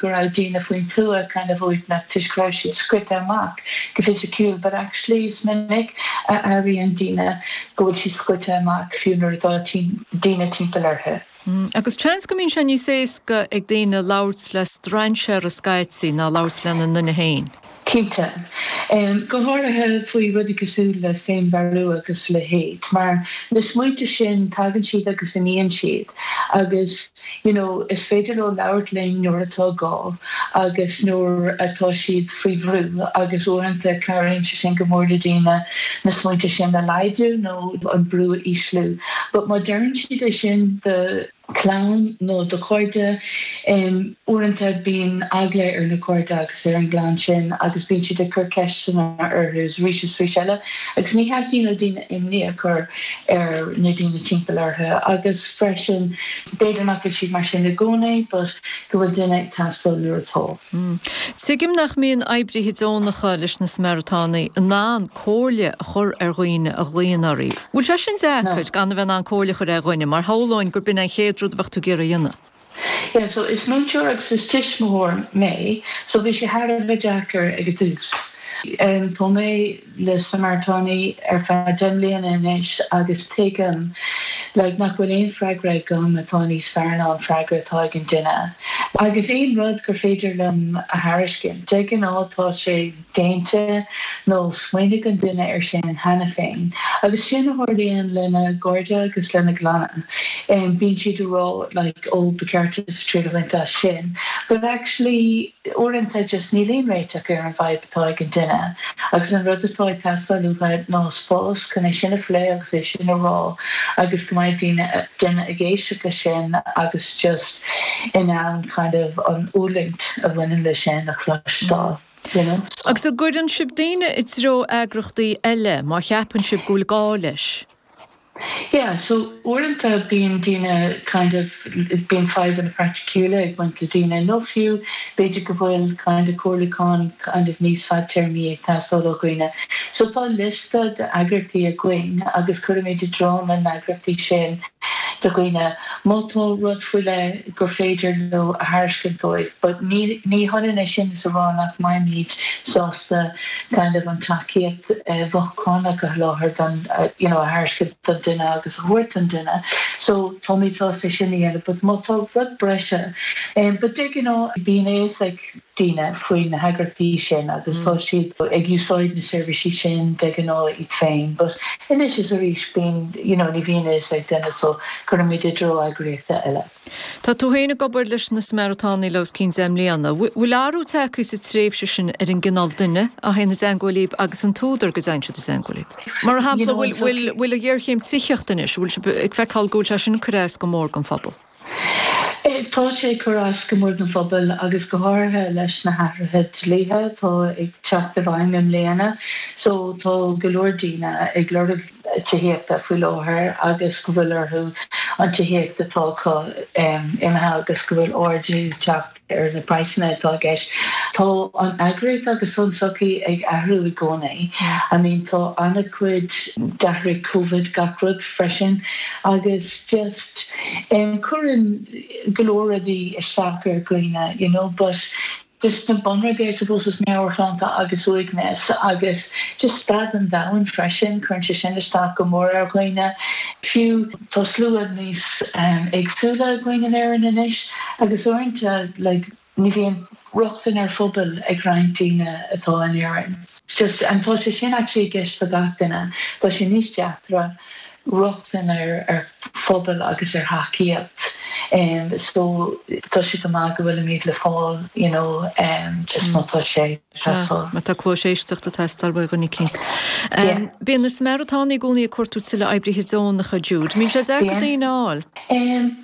go raibh daoine faoin tuath kind of uaigneach toisc go raibh siad scoite amach go fisiciúil but actually is minic a airíonn daoine go bhfuil siad scoite amach fiú nuair atá daoine timpeall orthu. Agus seans go mbíonn sé níos éasca ag daoine labhairt le strainséara scaití ná labhairt lena nduine féin. Cinnte. Go háirithe faoi rudaí cosúil le féinmharú agus a leithéid. Mar na smaointe sin, tagann siad agus imíonn siad. Agus you know is féidir leo labhairt linn nuair atá gá agus nuair atá siad faoi bhrú agus uaireanta cabhraíonn sé sin go mór le daoine na smaointe sin a laghdú nó an brú a ísliú. But má deireann siad é sin do chlann nó do chairde. Uaireanta bíonn eagla ar na cairde agus ar an gclann sin agus bíonn siad ag cur ceisteanna orthu arís is arís eile agus ní theastaíonn ó daoine imní a chur ar na daoine timpeall orthu agus freisin b'fhéidir nach bhfuil siad mar sin i gcónaí but go bhfuil duine ag teastáil nuair atá. Tuigim nach mbíonn oibrithe deonacha leis na Samaritánaigh in ann comhairle a chur ar dhaoine a ghlaonn orthu. Bhfuil sé sin deacair, gan a bheith in ann comhairle a chur ar dhuine, mar shamhlóinn gur b'in an chéad rud a bheadh tú ag iarraidh a dhéanamh? Yeah, so is múinteoir agus is tuismitheoir mé, so bhí sé thar a bheith deacair ag an dtús. Tá mé leis na Samaritánaigh ar feadh deich mbliana anois agus tuigim like nach bhfuil aon freagra agam atá níos fearr ná an freagra atá ag an duine. Agus aon rud gur féidir liom a thairiscint, de ghnáth tá sé. déanta, nó smaoinigh an duine air sin cheana féin, agus sin a tharlaíonn lena gcairde agus lena gclanna, bíonn siad a rá, like, oh, ba cheart duitse triail a bhaint as sin, but actually, uaireanta, just níl aon réiteach ar an bhfadhb atá ag an duine, agus an rud atá ag teastáil uathu ná spás chun é sin a phlé agus é sin a rá, agus go mbeidh daoine, duine ag éisteacht leis sin agus just in ann, kind of, an fhulaingt a bhaineann leis sin a chloisteáil. Agus an gcuireann sibh daoine i dtreo eagrachtaí eile má cheapann sibh go bhfuil gá leis? Yeah, so uaireanta bíonn daoine kind of, bíonn fadhbanna praiticiúla ag baint le daoine nó fiú b'fhéidir go bhfuil kind of comhairliúchán kind of níos fadtéarmaí ag teastáil ó dhaoine. So tá liosta d'eagrachtaí againn agus cuirimid i dtreo na n-eagrachtaí sin do dhaoine má tá rud faoi leith, gur féidir leo a thairiscint dóibh but ní hionann é sin is a rá nach mbeimid sásta kind of an tacaíocht mhothúchánach a sholáthar do you know a thairiscint don duine agus a thabhairt don duine so táimid sásta é sin a dhéanamh but má tá rud breise but de ghnáth bíonn a fhios ag daoine faoi na heagraíochtaí sin agus tá siad ag úsáid na seirbhísí sin de ghnáth iad féin but anois is arís bíonn you know ní bhíonn a fhios ag duine so cuirimid i dtreo eagraíochta eile. Tá tú féin ag obair leis na Samaritánaigh le os cionn deich mbliana. Bhfuil athrú tagtha sa tréimhse sin ar an gcineál duine a théann i dteangmháil libh agus an t-údar go dtéann siad i dteangmháil libh? Mar shampla, bhfuil an ghéarchéim tithíochta anois, bhfuil sibh ag feiceáil go bhfuil sé sin ag cur as go mór don phobal? Tá sé ag cur as go mór don phobal agus go háirithe leis na hathruithe dlíthe atá ag teacht i bhfeidhm i mbliana so tá go leor daoine ag lorg tithíochta faoi láthair agus go bhfuil orthu an tithíocht atá acu imithe agus go bhfuil ardú ag teacht ar na praghsanna atá i gceist. Tá an eagraíocht agus an tsochaí ag athrú i gcónaí. I mean, tá an-chuid, d'athraigh Covid gach rud freisin agus just em cuireann go leor rudaí isteach ar dhaoine, you know, but just na bunrudaí I suppose is meabhairshláinte agus uaigneas agus just staid an domhain freisin, cuireann sé sin isteach go mór ar dhaoine. Fiú. Tá slua níos éagsúla againn in Éirinn anois agus uaireanta ní bhíonn rochtain ar phobail ag roinnt daoine atá in Éirinn. Tá sé sin actually i gceist do gach duine. Tá sé níos deacra rochtain ar phobail agus ar thacaíocht so tá sé go maith go bhfuilimid le fáil you know just má tá sé. Sea, má tá cluais éisteachta ag teastáil ó dhuine eicínt. Bíonn na Samaritánaigh i gcónaí ag cuartú tuilleadh oibrithe deonacha, Jude. Mbíonn sé deacair daoine a fháil?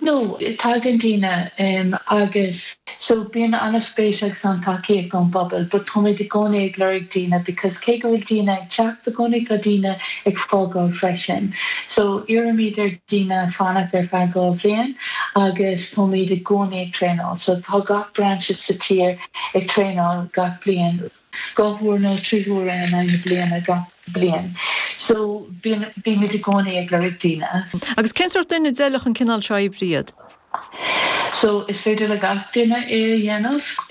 No, tagann daoine agus so bíonn an-spéis agus an-tacaíocht ón bpobal but táimid i gcónaí ag lorg daoine because cé go bhfuil daoine ag teacht i gcónaí tá daoine ag fágáil freisin. So iarraimid ar dhaoine fanacht ar feadh dhá bhliain agus táimid i gcónaí ag traenáil so tá gach brainse sa tír ag traenáil gach bliain, dhá huair nó trí huaire in aghaidh na bliana gach bliain. So, bíonn, bímid i gcónaí ag lorg daoine. Agus cén sórt duine a bhfeilfeadh an cineál seo oibre iad? So, is féidir le gach duine é a dhéanamh.